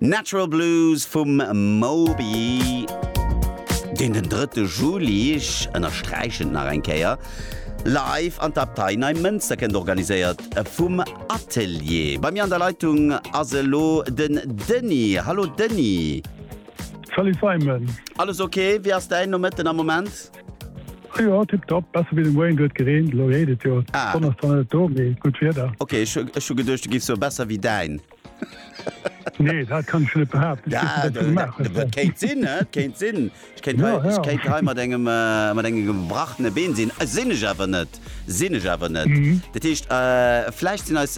Natural Blues vum Moby, deen den drëtte Juli, ech ënnersträichen et nach eng Kéier, live an d'Abtei Neimënster kënnt, organiséiert vum Atelier. Bei mir an der Leitung ass elo den Denis. Hallo Denis. Salut Simon. Alles ok? Wéi ass däin Nomëtten am Moment? Oh jo, tip top, besser wéi den Wayne, do huet gereent, elo reent et jo, d'Sonn ass zwar net do, mee gutt Wieder. Ok, ech hu geduecht du giffs soe besser wéi däin. Nee, dat kann ech jo net behaapten, ech weess net wat du gemaach hues hei. Kéint sinn, et kéint sinn, ech kéint hei, ech kéint hei mat engem, mat engem gebrachene Been sinn, sinn ech awer net, sinn ech awer net. Dat heescht, vläicht sinn eis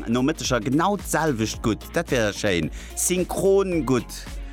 Nomëtteger genau d'selwecht gutt, dat wär schéin, synchron gutt.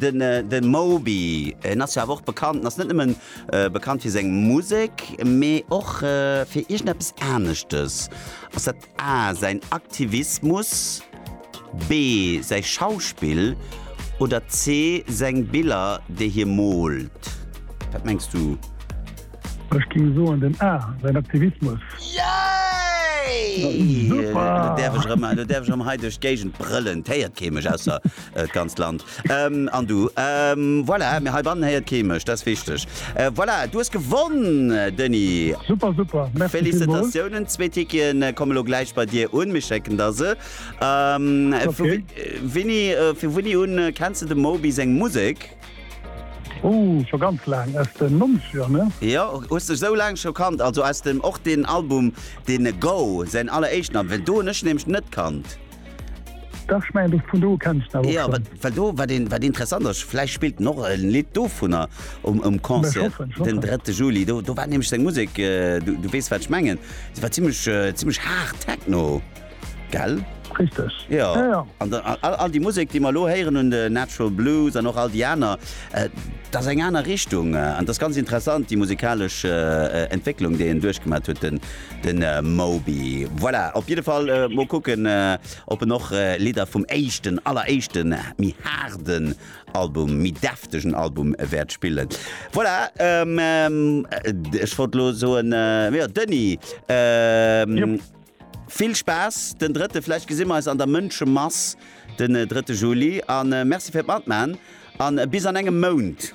Den Moby, en ass jo awer och bekannt, en ass net nëmmen bekannt fir seng Musek, mee och fir iergendeppes aneschtes. Ass dat A säin Aktivismus, B säi Schauspill oder C seng Biller déi hie moolt? Wat mengs du? Ech géing soen den A, säin Aktivismus. Yay! Super! Elo däerf ech erëm hei duerch d'Géigend brëllen, 't héiert kee mech ausser D'ganzt Land. An du. Voilà, mee heibannen héiert kee mech, dat ass wichteg. Voilà, du hues gewonn, Denis! Super, super, merci villmools! Félicitatiounen! Zwee Ticketen komme lo gläich bei dir un, mir schécken der se. Winni, vu winni un kenns de dem Moby seng Musek? Ohh, scho ganz laang, aus den Nonzeger, ne? Jo, hues dech esou laang scho kannt, also aus dem, och deen Album, dee Go, säin alleréischten Album, well do hunn ech en nämlech net kannt. Dach, ech mengen do, vun do kenns de awer och schon. Jo, wat, well do, wat een, wat interessant ass, vläicht spillt en och e Lidd dovunner um, um Concert ech hoffen, ech hoffen. den drëtte Juli. Do, do war nämlech seng Musek, du, du weess wat ech mengen, se war zimmlech, zimmlech hard Techno, gell? Richteg. Jo. Jo, jo. An da, all, all déi Musek, déi mer elo héieren un de Natural Blues an och all déi aner, dat ass eng aner Richtung an dat ass ganz interessant, déi musikalesch Entwécklung, déi en duerchgemat huet, den, den Moby. Voilà, op jidde Fall mol kucken, ob en och Lidder vum éischten, alleréischten, méi haarden Album, méi deftegen Album wäert spillen. Voilà, ech wollt elo soen, jo, Denis, vill Spaass den drëtte, vläicht gesi mer eis an der Mënschemass den drëtte Juli a merci fir d'Matman an bis an engem Mount.